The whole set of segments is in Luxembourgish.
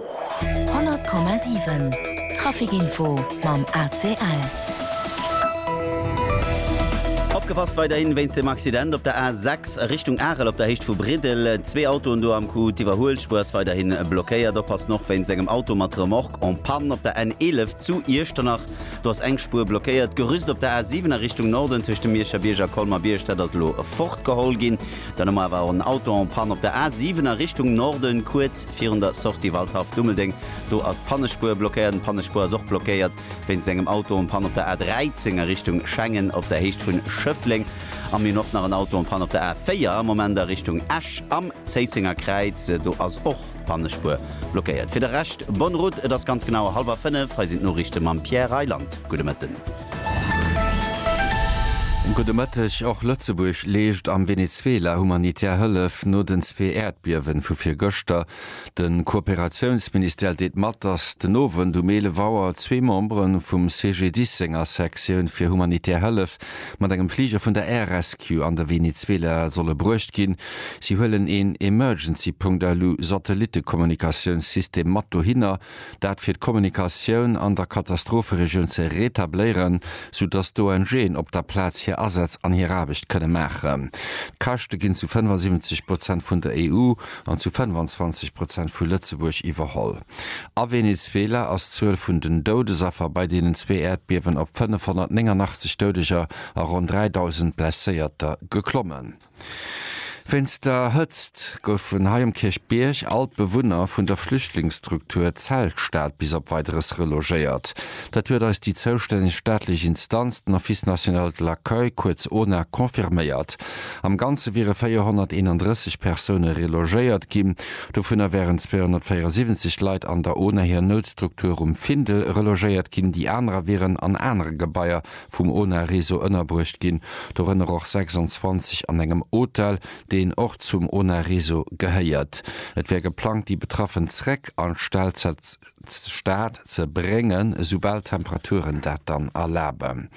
100,7 Trafic-Info mam ACL. Opgepasst weiderhin wéinst dem Accident op der A 6 Richtung Arel op der Héicht vu Briddel. Zwee Autoen do am Coup, d'Iwwerhuelspuer ass weiderhin blockéiert. Oppassen och wéinst engem Auto mat Remorque en panne op der N 11 zu Iechternach. Do ass eng Spuer blockéiert. D'Gerüst op der A 7 a Richtung Norden tëscht dem Mierscher Bierg a Colmer-Bierg, dat ass elo fortgeholl ginn. Dann hu mer awer och en Auto en Panne op der A7 a Richtung Norden, kuerz virun der Sortie Waldhaff-Dummeldeng. Do ass d'Pannespuer blockéiert. An d'Pannespuer ass och blockéiert wéinst engem Auto en Panne op der A13 a Richtung Schengen op der Héicht vun Schëffleng. A mir hunn och nach en Auto en Panne op der A4 am Moment a Richtung Esch am Zéissenger Kräiz. Do ass och d'Pannespuer blockéiert. Fir de Rescht, bonne route. Et ass ganz genau hallwer fënnef. Hei sinn d'Noriichte mam Pierre Reyland. Gudde Mëtten. Gudde Mëtteg. Och Lëtzebuerg leescht am Venezuela humanitär Hëllef no den zwee Äerdbiewen vu virgëschter. De Kooperatiounsministère deelt mat, datt den Owend um 11 Auer zwee Membere vum CGDIS senger Sektioun fir humanitär Hëllef mat engem Fliger vun der Air Rescue an de Venezuela solle bruecht ginn. Si huelen een Emergency Punkt elu Satellittekommunikatiounssystem mat dohinner. dat fir d'Kommunikatioun an der Katastropheregioun ze retabléieren, sou dass d'ONGen op der Plaz hir Asätz an hir Aarbecht kënne maachen. D'Käschte ginn zu 75 Prozent vun der EU an zu 25 Prozent vu Lëtzebuerg iwwerholl. A Venezuela ass d'Zuel vun den Doudesaffer bei deenen zwee Äerdbiewen op 589 Doudeger a ronn 3.000 Blesséierter geklommen. Wéinst der Hëtzt goufen hei um Kierchbierg all d'Bewunner vun der Flüchtlingsstruktur Zeltstad bis op Weideres relogéiert. Dat huet eis déi zoustänneg staatlech Instanz, den Office national de l'accueil, kuerz ONAC, confirméiert. Am Ganze wiere 431 Persoune relogéiert ginn. Dovunner wären 274 Leit an der ona hir Noutstruktur um Findel relogéiert ginn, déi anerer wieren an anere Gebaier vum ONA-Réseau ënnerbruecht ginn, dorënner och 26 an engem Hotel, deen och zum ONA-Réseau gehéiert. Et wär geplangt, déi Betraffen zréck an d'Stad ze bréngen, esoubal d'Temperaturen dat dann erlaben.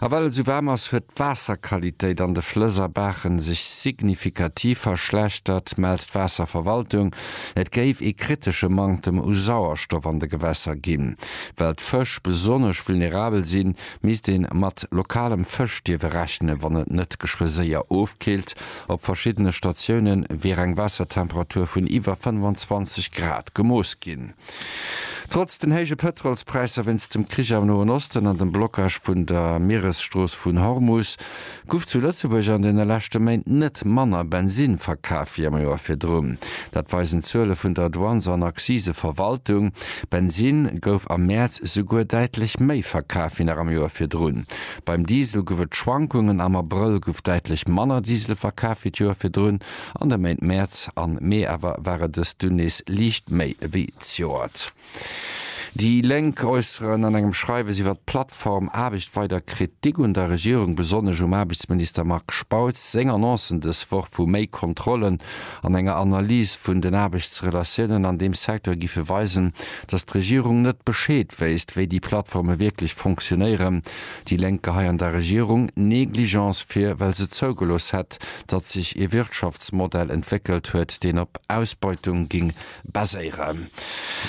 A well et sou waarm ass, huet d'Waasserqualitéit an de Flëss a Baachen sech signifikativ verschlechtert, mellt d'Waasserverwaltung. Et géif ee kritesche Manktem u Sauerstoff an de Gewässer ginn. Well d'Fësch besonnesch vulnerabel sinn, misst ee mat lokalem Fësch dierfe rechnen, wann et net geschwë séier ofkillt. Op verschiddene Statioune wier eng Waassertemperatur vun iwwer 25 Grad gemooss ginn. Trotz den héije Pëtrolspräisser wéinst dem Krich am Noen Osten an dem Blockage vun der Mieresstrooss vun Hormus, Guff zu Lëtzebuerg an den leschte Méint net manner Bensin verkaf wéi am Joer virdrun. Dat weisen d'Zuele vun der Douanes an Accise Verwaltung. Bensin gouf am Mäerz souguer däitlech méi verkaf wéi nach am Joer virdrun. Beim Diesel guff et Schwankungen, am Abrëll guff däitlech manner Diesel verkaf wéi d'Joer virdrun. An de Méint Mäerz an Mee awer ware dës dunn nees liicht méi wéi d'Joert. Déi Lénk äusseren an engem Schreiwes iwwer d'Plattform Aarbecht weider Kritik un der Regierung, besonnesch um Aarbechtsminister Marc Spautz seng Annoncen dës Woch vu méi Kontrollen an enger Analys vun den Aarbechtsrelatiounen an deem Secteur gife weisen, datt d'Regierung net Bescheed wéisst, wéi déi Plattforme wierklech fonctionéieren. Déi Lénk geheien der Regierung Negligence vir, well se zougelooss hätt, datt sech ee Wirtschaftsmodell entwéckelt huet, deen op Ausbeutung géing baséieren.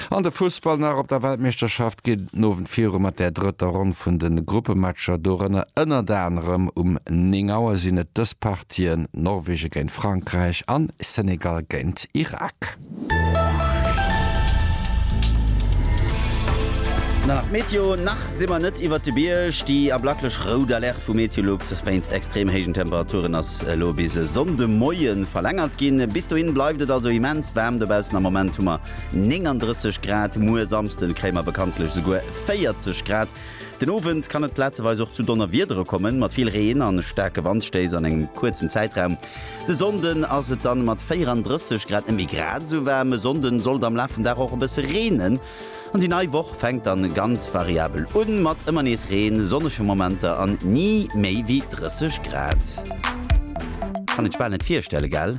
An de Fussball nach, Op der Weltmeeschterschaft geet et den Owend viru mat der drëtter Ronn vun de Gruppematcher. Dorënner ënnert anerem um 9 Auer sinn et dës Partien, Norwegen géint Frankräich an Senegal géint Irak. Dann nach d'Meteo, Nach si mer net iwwert de Bierg. Déi ablaklech rout Alerte vu Meteolux wéinst extrem héijen Temperaturen ass Ass elo bis e Sonnde Moie verlängert ginn. Bis dohin bleift et also immens waarm dobaussen. Am Moment hu mer 39 Grad, muer Samsden kréie mer bekanntlech esouguer 40 Grad. Den Owend kann et plazeweis och zu Donnerwiedere kommen, mat vill Reen an staarke Wandstéiss an engem kuerzen Zäitraum. De Sonnden ass et dann mat 34 Grad net méi grad esou waarm. E Sonnde sollt am Laf vum Dag och e bësse reenen. An déi nei Woch fänkt dann ganz variabel un, mat ëmmer nees Reen, sonnege Momenter an ni méi wéi 30 Grad. Kann een bal net virstellen, gell?